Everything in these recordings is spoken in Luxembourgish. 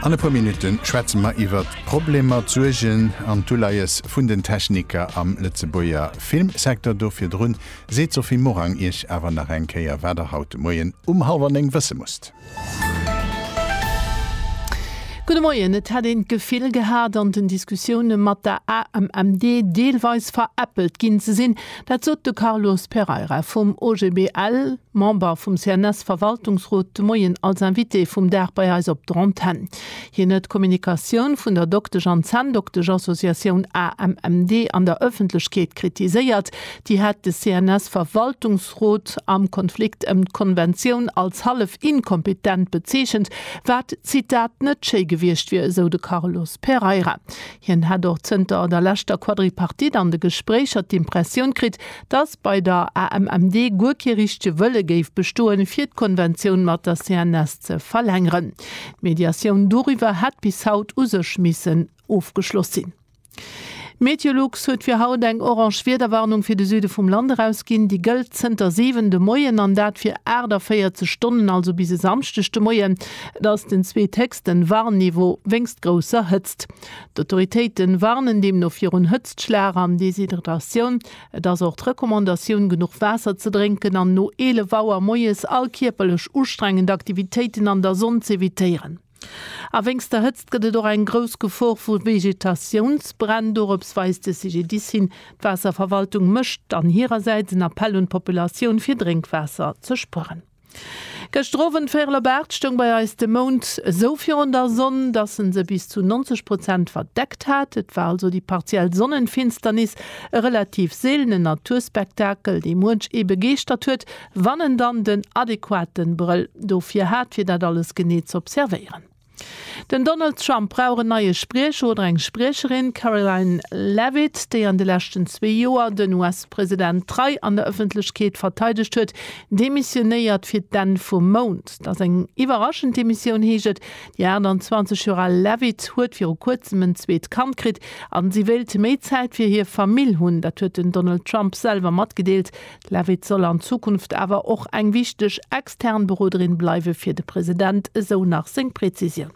An e puer Minutte schwätze mer iwwer d'Problemer, d'Suergen an d'Uleies vun den Techniker am Lëtzebuerger Filmsecteur. Do virdru seet d'Sophie Morang iech awer nach eng Kéier, wat der haut de Moien um hallwer néng wësse musst. Gudde Moien. Et hätt een d'Gefill gehat, an den Diskussioune mat der AMMD deelweis veräppelt ginn ze sinn. Dat sot de Carlos Pereira vum OGBL. Member vum CNS-Verwaltungsrot, de Moien als Invité vum Dag bei eis op der Antenn. Hien huet d'Kommunikatioun vun der Doktesch an Zänndokteschassociatioun AMMD an der Ëffentlechkeet kritiséiert. Déi hätt de CNS-Verwaltungsrot am Konflikt ëm d'Konventioun als hallef inkompetent bezeechent, wat, Zitat, net schéi gewiescht wier, esou de Carlos Pereira. Hien hätt och zënter der leschter Quadripartite an de Gespréicher d'Impressioun kritt, datt bei der AMMD guer kee richtege Wëlle géif bestoen, fir d'Konventioun mat der CNS ze verlängeren. D'Mediatioun doriwwer hätt bis haut u sech missen ofgeschloss sinn. Meteolux huet fir haut eng orange Wiederwarnung fir de Süde vum Land erausginn. Déi gëllt zënter 7 de Moien an dat fir 48 Stonnen, also bis e Samschdeg de Moien. Et ass den zweet héchsten. den Warnniveau wéinst grousser Hëtzt. D'Autoritéite warnen deemno virun Hëtztschlag an Deshydratatioun. Et ass och d'Recommandatioun, genuch Waasser ze drénken an no 11 Auer moies all kierperlech ustrengend Aktivitéiten an der Sonn z'evitéieren. A wéinst der Hëtzt gëtt et och eng grouss Gefor vu Vegetatiounsbränn. Dorops weist de CGDIS hin. D'Waasserverwaltung mécht an hirersäits en Appell un d'Populatioun, fir Drénkwaasser ze spueren. Gëschter Owend véirel op 8 stoung bei eis de Mound esou virun der Sonn, dass en se bis zu 90 Prozent verdeckt hat. Et war also déi partiell Sonnenfinsternis, e relativ seelenen Naturspektakel, dee muench ee begeeschtert huet, wann en dann den adequaten Brëll dofir hat, fir dat alles genee z'observéieren. Den Donald Trump brauch en neie Spriecher oder eng Spriecherin, Karoline Leavitt, déi an de leschten zwee Joer den US-President trei an der Ëffentlechkeet verteidegt huet, demissionéiert fir d'Enn vum Mount. Et ass eng iwwerraschend Demissioun, heescht et. Déi 28 Joer al Leavitt huet viru kuerzem en zweet Kand kritt a si wéilt méi Zäit fir hir Famill hunn. Dat huet den Donald Trump selwer matgedeelt. Leavitt soll an Zukunft awer och eng wichteg extern Beroderin bleiwe fir de President, esou nach seng Prezisioun.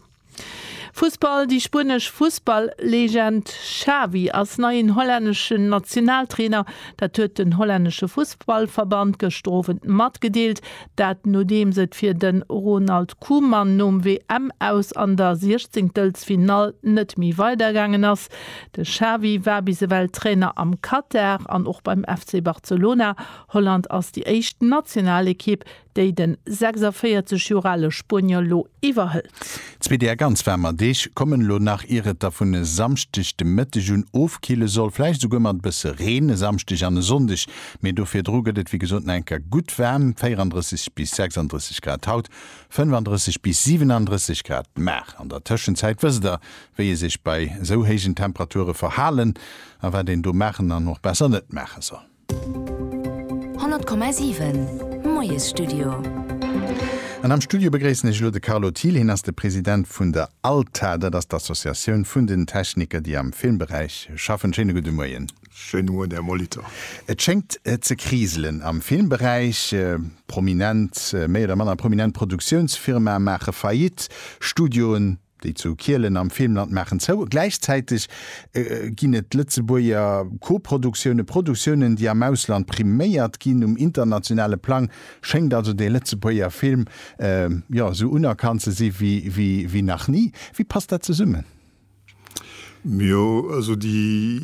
Fussball Déi spuenesch Fussball-Legend Xavi ass neien hollänneschen Nationaltrainer. Dat huet den hollännesche Fussballverband gëschter Owend matgedeelt. Dat nodeems et fir de Ronald Koeman nom WM-Aus an der siechzéngtelsfinall net méi weidergaangen ass. De Xavi war bis ewell Trainer am Katar an och beim FC Barcelona. Holland ass déi éischt Nationalekipp, déi de 46 Joer ale Spuenier elo iwwerhëlt. Zwee déer ganz waarmer Deeg kommen elo nach, ier et da vun e Samschdeg de Mëtteg un ofkille soll, vläicht esouguer mat e bësse Reen e Samschdeg an e Sonndeg. Mee do virdru gëtt et wéi gesot nach eng Kéier gutt waarm, 34 bis 36 Grad haut, 35 bis 37 Grad mar an der Tëschenzäit, wësst Der, wéi ee sech bei esou héijen Temperature verhalen a wat een do maachen an och besser net maache soll. 100,7 Moiesstudio. An am Studio begréissen ech elo de Carlo Thiel, hien ass de President vun der ALTA, dat ass d'Associatioun vun den Techniker, déi am Filmberäich schaffen. Schéine gudde Moien. Schéine Moien, Här Molitor. Et schéngt ze kriselen am Filmberäich. Prominent, méi oder manner prominent Produktiounsfirmae maache Faillite, Studioen Déi zu Kielen am Filmland maachen zou. Gläichzäiteg ginn et Lëtzebuerger Koproduktiounen, Produktiounen, déi am Ausland priméiert ginn. Um internationale Plang schéngt also de Lëtzebuerger Film, jo, esou unerkannt ze si wéi nach ni. Wéi passt dat zesummen? Jo, also déi,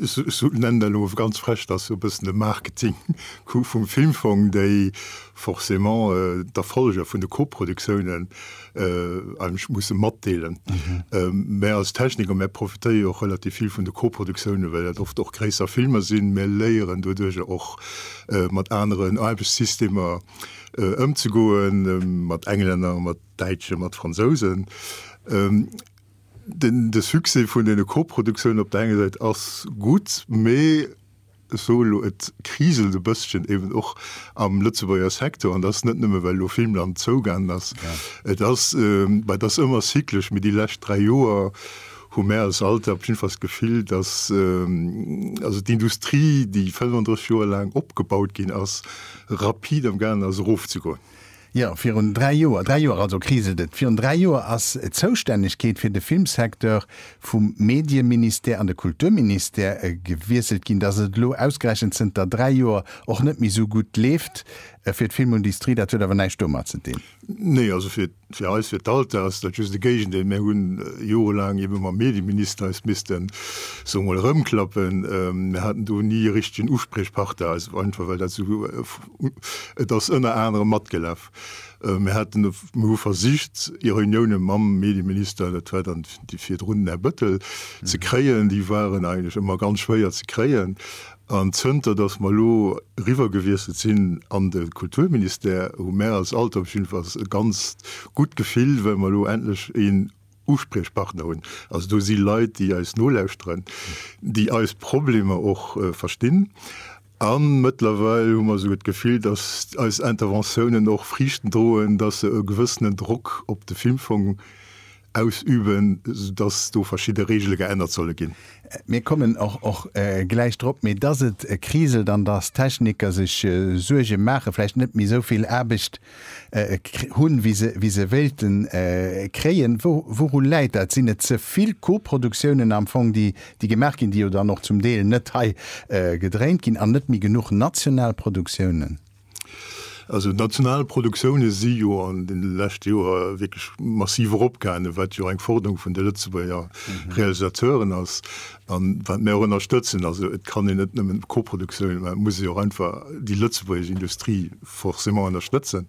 ech nennen dat elo ganz frech, dat ass e bëssen de Marketing-Coup vum Filmfong, déi forcément d'Erfolleger vun de Koproduktiounen, ech musse matdeelen. Mär als Techniker, mär profitéie jo och relativ vill vun de Koproduktiounen, well dat oft och gréisser Filmer sinn. Mär léieren doduerch jo och, mat aneren Aarbechtssystemer ëmzegoen, mat Englänner, mat Däitschen, mat Fransousen. De Succès vun deene Koproduktiounen op der enger Säit ass gutt, mee Sou elo, et kriselt e bësschen eben och am Lëtzebuerger Secteur an dat ass net nëmme well elo Filmland zougaangen ass. Et ass, mä et ass ëmmer cyclesch, mee déi lescht dräi Joer hu mär als Alter op jiddenfalls d'Gefill, datt also d'Industrie, déi 35 Joer laang opgebaut ginn ass, rapid am gaangen ass erofzegoen. Jo, virun dräi Joer, dräi Joer also, kriselt et, virun dräi Joer ass d'Zoustännegkeet fir de Filmsecteur vum Medieministère an de Kulturministère gewiesselt ginn. Dass et elo ausgerechent zënter dräi Joer och net méi esou gutt leeft fir d'Filmundistrie, dat huet awer näischt domat ze dinn. Nee, also fir eis, fir d'ALTE ass dat just de Géigendeel. Mir hunn jorelaang ebe mam Medieminister eis missten, soe mol, erëmklappen. Mir haten do ni e richtegen Uspriechparter, einfach well dat esou, Et ass ënner anerem matgelaf. Mir haten, mir hu versicht Reunioune mam Medieminister, dat war dann déi virdrun, den Här Bëttel, ze kréien. Déi waren eigentlech ëmmer ganz schwéier ze kréien. An zënter datt mer elo eriwwer gewiesselt sinn an de Kulturministère, hu mär als ALTER op jiddwer Fall e ganz gutt Gefill, well mer elo endlech een, Uspriechpartner hunn. Also do si Leit, déi eis nolauschteren, déi eis Problemer och verstinn. A mëttlerweil hu mer esouguer d'Gefill, datt eis Interventiounen och Friichten droen, datt se e gewëssenen Drock op de Filmfong ausüben, datt do verschidde Reegele geännert solle ginn. Mir kommen och gläich drop. Mee datt et kriselt an datt d'Techniker sech Suerge maachen, vläicht net méi esou vill Aarbecht hunn, wéi se wéilte kréien. Wourun läit dat? Sinn et ze vill Koproduktiounen am Fong, déi gemaach ginn, déi jo dann och zum Deel net hei gedréint ginn, an net méi genuch national Produktiounen? Also d'national Produktioune si jo an de leschte Joer wierklech massiv eropgaangen, wat jo eng Forderung vun de Lëtzebuerger Realisateuren ass a wat mir och ënnerstëtzen. Also et kann een net nëmmen Koproduktiounen, mä et muss ee jo och einfach déi lëtzebuergesch Industrie forcément ënnerstëtzen.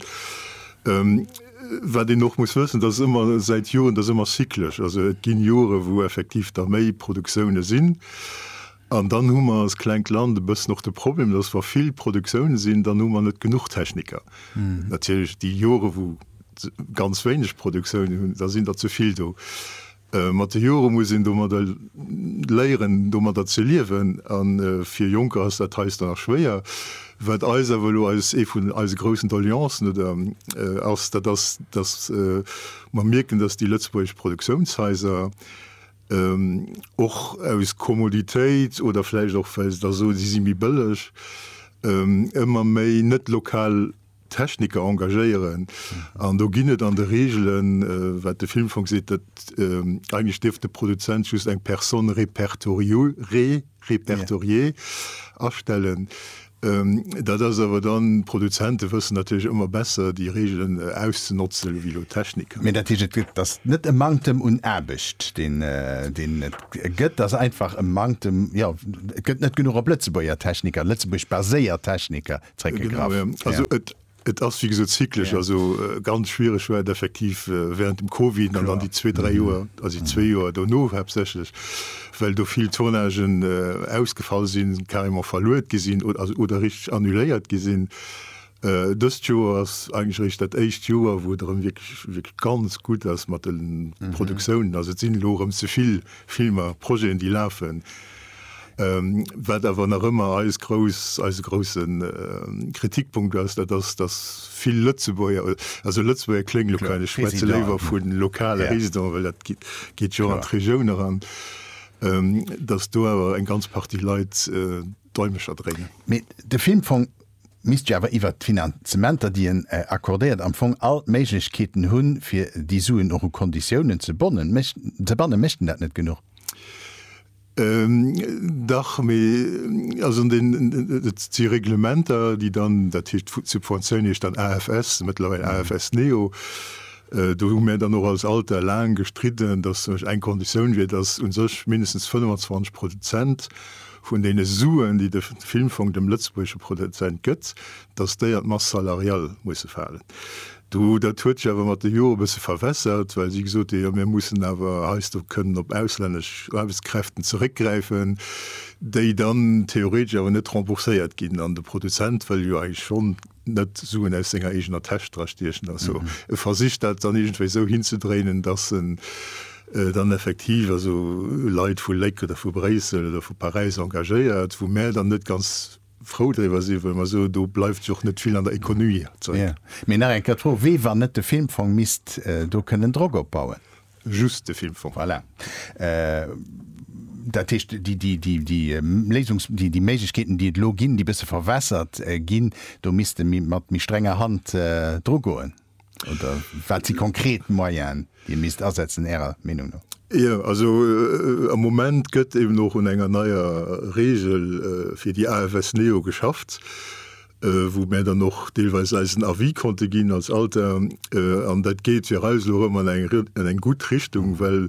Wat een och muss wëssen, dass ëmmer säit Joren, dass ëmmer cyclesch, also et ginn Jore wou effektiv da méi Produktioune sinn an dann hu mer als klengt Land e bëssen och de Problem, dass wa vill Produktioune sinn, dann hu mer net genuch Techniker. Natierlech déi Jore wou se ganz wéineg Produktioune hunn, da sinn der ze vill do. Mat de Jore muss een domadder léieren, domadder ze liewen. A fir Jonker ass dat heiansdo nach schwéier. Wat eis awer elo eis, ee vun eise groussen Doleancen oder ass, dat ass, dass mer mierken, dass déi lëtzebuergesch Produktiounshaiser och aus Kommoditéit oder vläicht och, well se da soen, si si méi bëlleg, ëmmer méi net-lokal Techniker engagéieren an do ginn et an de Reegelen, wat de Filmfong seet, datt eigentlech dierf de Produzent just eng Personne répertoriée, répertoriée, astellen. Dat ass awer dann, d'Produzente wëssen natierlech ëmmer besser déi Reegelen auszenotzen ewéi elo d'Techniker. Mee dat heescht, et gëtt, et ass net e Manktem un Aarbecht, deen, deen et gëtt, et ass einfach e Manktem, jo, et gëtt net genuch op Lëtzebuerger Techniker, Lëtzebuerg-baséiert Techniker, Et ass wéi gesot zyklesch, also ganz schwiereg war et effektiv während dem Covid an dann déi zwee, dräi Joer, also déi zwee Joer dono haaptsächlech, well do vill Tournagen ausgefall sinn, carrément verluet gi sinn oder richteg annuléiert gi sinn. Dëst Joer ass eigentlech eréischt dat éischt Joer, wou et erëm wierklech ganz gutt ass mat de Produktiounen. Also et sinn elo erëm zevill Filmer, Projeten, déi lafen. Wat awer nach ëmmer eis grouss, eise grousse Kritikpunkt ass, dat ass, dass vill Lëtzebuerger, also Lëtzebuerger kléngt elo kal, ech schwätze léiwer vu lokale Résidenten, well dat geet jo an d'Regioun eran, dass do awer eng ganz Partie Leit d'Däumecher dréinen. Mee de Filmfong misst jo awer iwwert d'Finanzementer, déi en accordéiert, am Fong all d'Méiglechkeeten hunn, fir déi Suen och u Konditiounen ze bannen. Mécht en dat net genuch? Dach, mee also deen, et si Reglementer, déi dann, dat heescht d'Subventioun heescht dann AFS, mëttlerweil AFS neo. Do hu mär dann och als Alter laang gestridden, datt zum Beispill eng Konditioun wier, datt u sech mindestens 25 Prozent vun deene Suen, déi de Filmfong dem lëtzebuergesche Produzent gëtt, datt déi an d'Masse salariale musse falen. Do, dat huet sech awer mat de Jore e bësse verwässert, well si gesot hunn, jo mir mussen awer heiansdo kënnen op auslännesch Aarbechtskräften zeréckgräifen, déi dann theoretesch awer net rembourséiert ginn. An de Produzent wëll jo eigentlech schonn net Suen aus senger eegener Täsch dra stiechen. Also e versicht dat dann iergendwéi esou hinzedréinen, datt en dann effektiv also Leit vu Léck oder vu Bréissel oder vu Paräis engagéiert, wou mär dann net ganz, frou driwwer sinn, well mer soen, do bleift jo och net vill an der Économie zeréck. Jo, mee nach eng Kéier d'Fro, Wéi wann net de Filmfong misst do kënnen Drock opbauen? Just de Filmfong. Voilà. Dat heescht, déi Léisungs-, déi Méiglechkeeten, déi et elo ginn, déi e bësse verwässert ginn, do misst e méi, mat méi strenger Hand drugoen. Oder wat si konkret Moyen Dir misst asetzen Ärer Meenung no? Jo, also am Moment gëtt eben och un enger neier Regel fir déi AFS Neo geschafft, wou mär dann och deelweis eisen Avis konnte ginn als Alter. An dat geet fir eis elo erëm an eng an eng gutt Richtung, well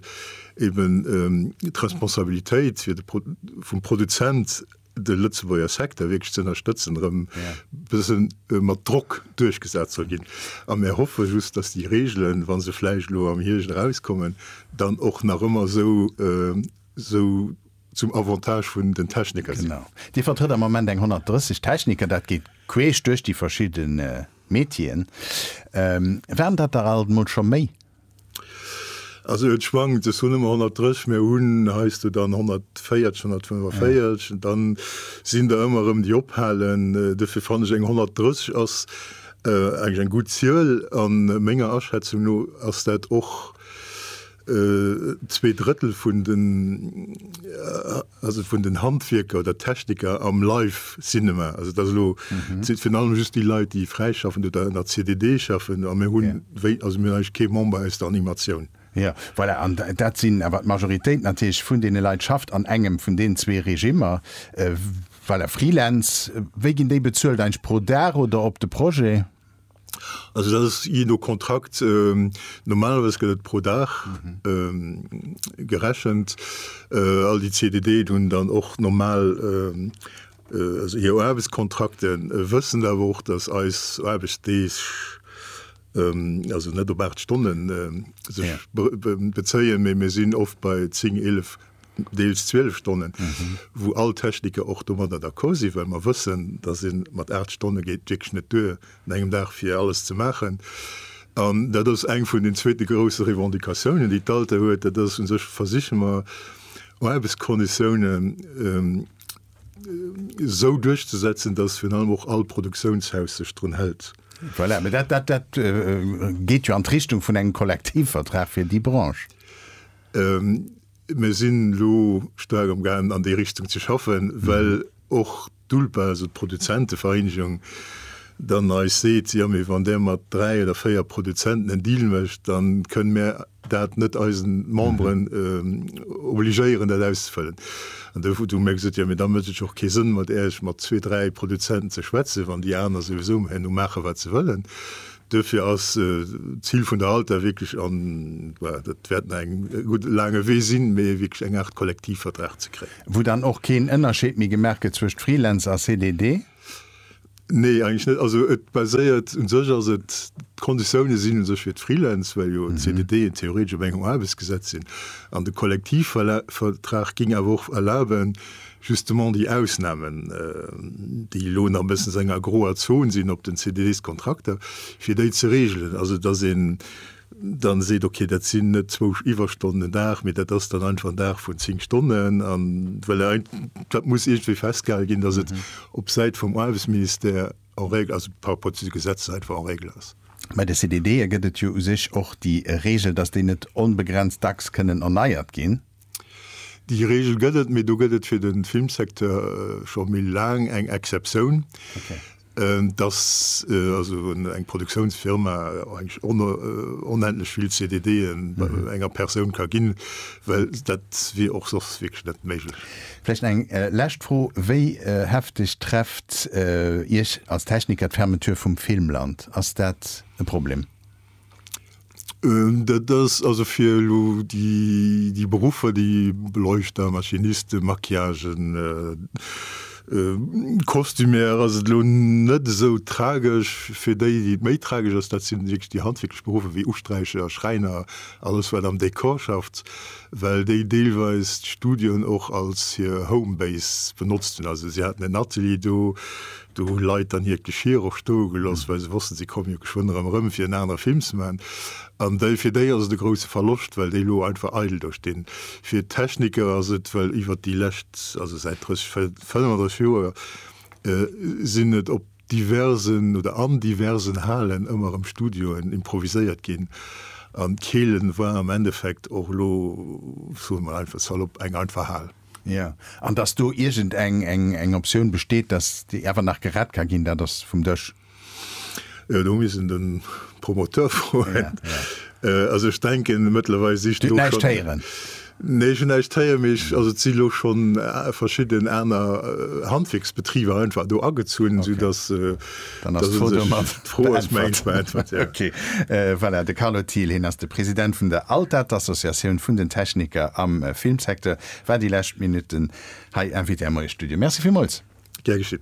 eben d'Responsabilitéit fir de vum Produzent de Lëtzebuerger Secteur wierklech ze ënnerstëtzen, erëm e bësse mat Drock duerchgesat soll ginn. A mir hoffe just, datt déi Reegelen, wa se vläicht elo am Hierscht erauskommen, dann och nach ëmmer esou zum Avantage vun den Techniker sinn. Genau. Dir vertrëtt am Moment eng 130 Techniker, dat geet queesch duerch déi verschidde Metieren. Waren dat der alt emol scho méi? Also et schwankt, ech hunn ëmmer 130, mä hunn heiansdo dann 140, 145 an dann sinn der ëmmer erëm déi ophalen. Dofir fannen ech eng 130 ass eng eng gutt Zuel an menger Aschätzung no ass dat och zwee Drëttel vun den, Also vun den Handwierker oder Techniker am Live Cinema. Also dat ass elo virun allem just déi Leit, déi fräischaffen oder an der CDD schaffen. A mir hunn, wéi, also mir hunn eigentlech kee Member aus der Animatioun. Jo, voilà. An dat sinn awer d'Majoritéit natierlech vun deene Leit schafft an engem vun deenen zwee Regimmer. Voilà, Freelance, wéi ginn déi bezuelt? Eigentlech pro Dag oder op de Projet? Also dat ass jee no Kontrakt, normalerweis gëtt et pro Dag gerechent. All déi CDDen hunn dann och normal hir Aarbechtskontrakten, wëssen awer och, datt eis Aarbechtsdeeg also net op 8 Stonne sech bezéien, mee mir sinn oft bei 10, 11 deels 12 Stonnen, wou all Techniker och domadder d'accord sinn, well mer wëssen, dass ee mat 8 Stonne geet wierklech net duer un engem Dag fir alles ze maachen. An dat ass eng vun den zweete grouse Revendicatiounen, déi d'ALTE huet, dat ass u sech, versiche mer Aarbechtsconditiounen esou duerchzesetzen, dass virun allem och all Produktiounshaus sech drun hält. Voilà, mä dat geet jo an d'Richtung vun engem Kollektivvertrag fir déi Branche. Mir sinn elo staark am gaangen an déi Richtung ze schaffen, well och d'ULPA, also d'Produzentevereenegung, dann eis seet, jo mee wann där mat dräi oder véier Produzenten en Deal mécht, da kënnen mir dat net eisen Memberen obligéieren dat auszefëllen. An do hu mir gesot, jo mee da mécht et jo och kee Sënn mat Äerch mat zwee, dräi Produzenten ze schwätzen, wann déi aner souwisou herno maachen wat se wëllen. Duerfir ass d'Zil vun der Halter wierklech, an dat wäert nach eng gutt laange Wee sinn, mee wierklech eng Aart Kollektivvertrag ze kréien. Wou dann och keen Ënnerscheed méi gemaach gëtt zwëscht Freelance a CDD? Nee, eigentlech net. Also et baséiert, u sech ass et, d'Konditioune sinn u sech fir d'Freelance, well jo d'CDDen theoretesch op engem Aarbechtsgesetz sinn. An de Kollektivvertrag géing awer och erlaben, Justement déi Ausnahmen, déi elo nach e bëssen esou enger groer Zone sinn op den CDDs-Kontrakter, fir déi ze regelen, also dass een dann seet, okay, dat sinn net zwou Iwwerstonnen den Dag, mee dat ass dann einfach en Dag vun zéng Stonnen, an well dat muss iergendwéi festgehale ginn, dass et op Säit vum Aarbechtsministère en règle, also par rapport zu de Gesetzer, einfach en règle ass. Bei de CDDe gëtt et jo u sech och déi Regel, dass déi net onbegrenzt dacks kënnen erneiert ginn. Déi Reegel gëtt et, mee do gëtt et fir de Filmsecteur scho méi laang eng Exceptioun, dass also eng Produktiounsfirma eigentlech onendlech vill CDDen enger Persoun ka ginn, well dat wier och soss wierklech net méiglech. Vläicht eng lescht Fro, Wéi hefteg trefft Iech als Techniker d'Fermeture vum Filmland? Ass dat e Problem? Ähm, dat ass also fir elo déi, déi Beruffer, déi Beleuchter, Maschinisten, Maquillagen, äh, äh, Kostümär ass et elo net esou tragesch. Fir déi, déi et méi tragesch ass, dat si wierklech déi handwierklech Beruffer wéi Usträicher, Schräiner, alles wat am Dekor schafft, well déi deelweis d'Studioen och als hir Homebase benotzt hunn. Also si haten en Atelier do, Do hu Leit dann hiert Geschir och stoe gelooss, well se wossten, se komme jo geschwënn erëm erëm, fir en anere Film ze maachen. An déi, fir déi ass et e grousse Verloscht, well déi elo einfach eidel do stinn. Fir d'Techniker ass et, well iwwert déi lescht, also säit 30, 35 Joer sinn et op diversen oder an diversen Halen ëmmer erëm Studioen improviséiert ginn. An d'Keelen war am Endeffekt och elo, soe mer einfach salop, eng einfach Hal. Jo, an datt do iergend eng, eng, eng Optioun besteet, datt déi awer nach gerett ka ginn, dat ass vum Dësch. Jo, do muss een de Promoteur froen. Also ech denken, mëttlerweil si scho. Dir hutt näischt héieren? Nee, ech hunn näischt héieren, mee ech, also et si lo scho verschidden aner Handwierksbetriber einfach do agezunn, soudatt. Dann ass d'Foto mat beäntwert. Okay, voilà, de Carlo Thiel, hien ass de President vun der ALTAT, Associatioun vun den Techniker am Filmsecteur, war déi lescht Minutten hei Invité am Moie Studio. Merci villmools. Gär geschitt.